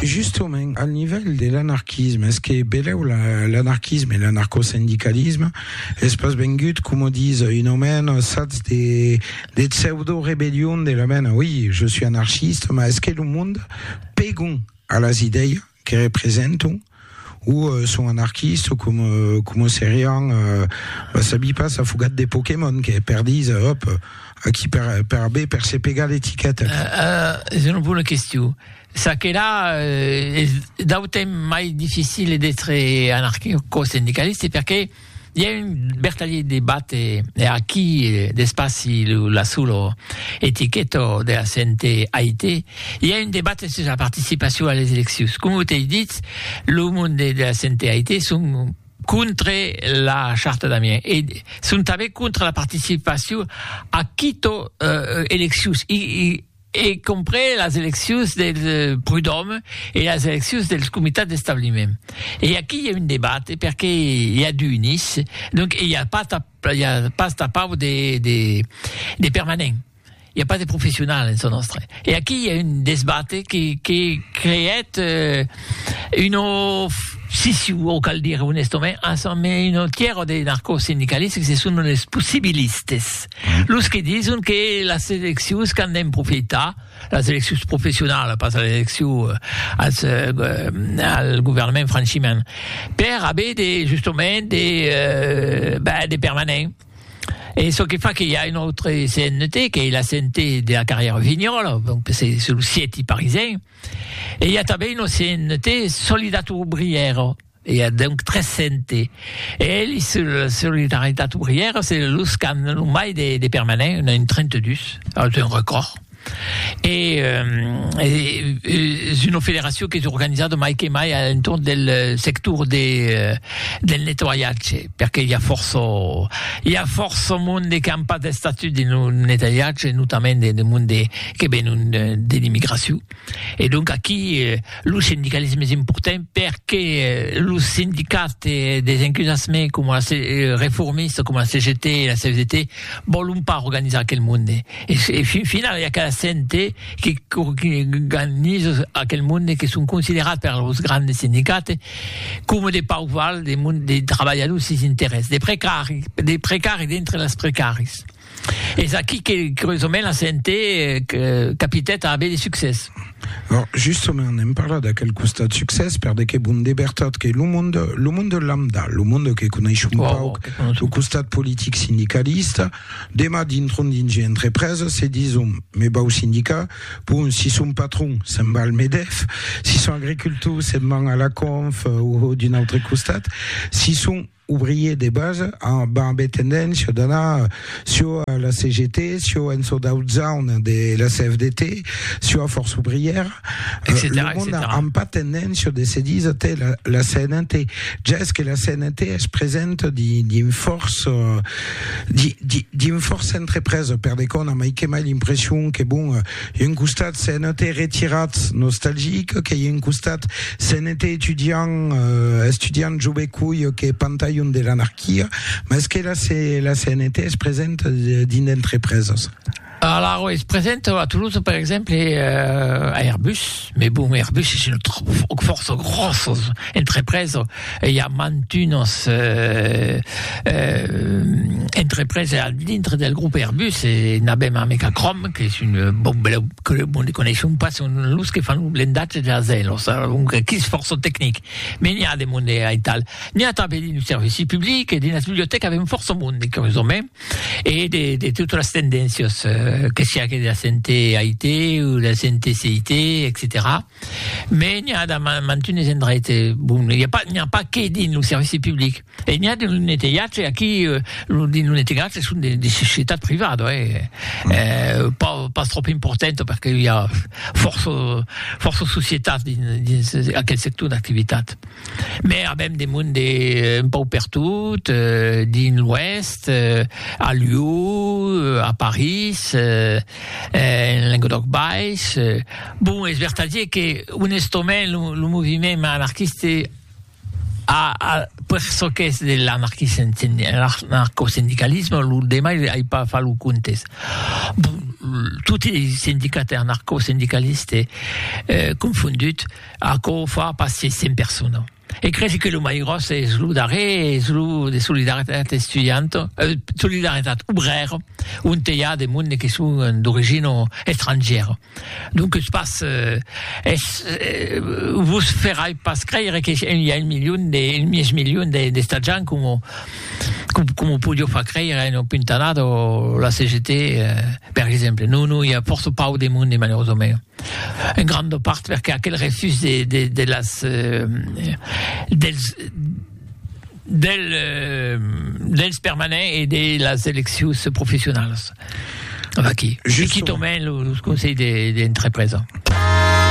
Justament, al nivèl de l'anarquisme, es que belèu l'anarquisme e l'anarcosindicalisme es pas vengut, coma ditz un omèn, sats de pseudo-rebellion de la mena, oi, je suis anarchiste, mas es que lo monde pègon a las idèias que representam o son anarquistes o com, como serián, va sabir pas, afogat de Pokémon que perdís, òp, aquí per, per aver per se pegar l'etiqueta. Uh, es una bona question. Ça que là, uh, es d'autem mai difficile d'être anarquico-sindicaliste perché I a un bertalhit de bate e aquí d'espaci lo la sulo etiqueto de la CNT AIT i a un debat sus la participacion a les eleccions. Com ho t'ei dit, lo monde de la CNT AIT son contre la charta d'Amiens e son tanben contre la participacion a quito eleccions. I, i, e comprés las eleccions del Prud'Òme e las eleccions dels comitats d'establiment. E aquí i a un debate perque i a du unis, donc i a pas i a pas tapau de de de permanent, i a pas de professional en çò nòstre. E aquí i a un desbate que que creèt un of siciu o cal dire onestament, un autièr de narcosindicalistes que se son los possibilistes. Los que dison que las eleccions qu'an d'en profitar, las eleccions professionalas, pas las eleccions euh, als, euh, euh, al governament franchiment, per haver de, justament de, euh, ben, de permanents. Et ce qui fait qu'il y a une autre CNT, qui est la CNT de la carrière Vignol, donc c'est sur le site parisien. Et il y a une CNT Solidato Ouvrière, I a donc 300 e elis se la solidaritat obrièra se los qu'an lo mai de, de permanent, un a un 32, es un recòrd. E es una federacion qu'es organizada mai que mai a l'entorn del sector de, del nettoiatge, perque i a fòrça, i a fòrça monde qu'an pas d'estatut dins lo nettoiatge, notament de monde que venon de l'immigracion. E donc aquí lo sindicalisme es important perque los sindicats des encusassement coma la se reformista coma la CGT e la CFDT vòlon pas organizar aquel monde e e fin final i a cada cente que qu'organiza aquel monde que son considerats per los grandes sindicats coma de pauc val de monde de trabalhadors sis interès de precari de precari dintre les precaris. Es aquí que, curiosament, la CNT capitèt a aver de succès. Bon, justament, n'èm parlat d'aquel costat succès, per de que, bon, de vertat, que lo monde, lo monde lambda, lo monde que coneis un wow, pauc, wow, lo costat politic sindicalista, demà dintron dins un entrepresa, se dison, me vau sindicar, bon, si son patron, se'n va al Medef, si son agricultor, se'n van a la Conf, o d'un autre costat, si son, ouvrier de base, amb abe tendéncia d'anar sio a la CGT, sio en çò d'aut zaun de la CFDT, sio a Força Ouvrièra, lo mond amb pas tendéncia de se díser te la, la CNT. Ja es que la CNT es presenta di, dins fòrça, di, di, dins fòrça entrepresa, per de còna, mai que mai l'impression que, bon, Un costat se'n ète retirat nostalgic que un costat se'n ète estudiant, estudiant jo be coi que pantalhon de l'anarquia, mès que la, la CNT es present dins d'entrepreses. Alara, es present a Toulouse, per exemple, a Airbus. Mes bon, Airbus es una fòrça gròssa entrepresa e i a mantunas entrepresa al dintre del grop Airbus e n'avèm a Mecacròm qu'es un bon bèl que lo monde coneisson pas son los que fan lo blendatge de las aèlos alonque qu'i es fòrça tecnic me n'i a de monde aital n'i a tanben dins lo servici public e dins las bibliotècas avèm fòrça monde curiosament E de, de totes les tendéncias, euh, que siá que de la sente AIT o de la sente CIT, etc. Me n'hi ha de mantunes endreit, eh, bon, n'hi ha pas, n'hi ha pas que dins lo servici public. E n'hi ha de lo netelhatge, aquí, euh, lo, dins lo netelhatge son de, de societat privada, eh, mm. eh, pas, pas trop importanta, perque hi ha força, força societat dins, dins aquel sector d'activitat. Mès avèm de monde un pauc pertot, dins l'Oèst, a Lió, a París, en Lenguedòc Baish. Bon, es vertadier que, onestament, lo, lo moviment anarquiste a, a, per çò qu'es de l'anarquisme, anarcosindicalisme, lo demai ai pas fach lo comptes. Bon, toti es sindicats anarcosindicalistes confonduts. Aquò fa pas se cent persona. E cresi que lo mai gròs es lo darrèr, es lo de Solidaritat Estudianta, eh, Solidaritat Obrèra, onte i a de monde que son d'origina estrangièra. Donques pas, eh, es, eh, vos ferai pas creire que i a un milion de, un mièg milion de, d'estatjants coma, coma podió far creire a una puntanada la CGT, eh, per exemple. Non, non, i a fòrça pauc de monde, malerosament. En granda part perque aquel refús de de de las dels del dels permanents e de las eleccions professionalas. Vaqui, se quitòmen los conselhs de de entrepresa.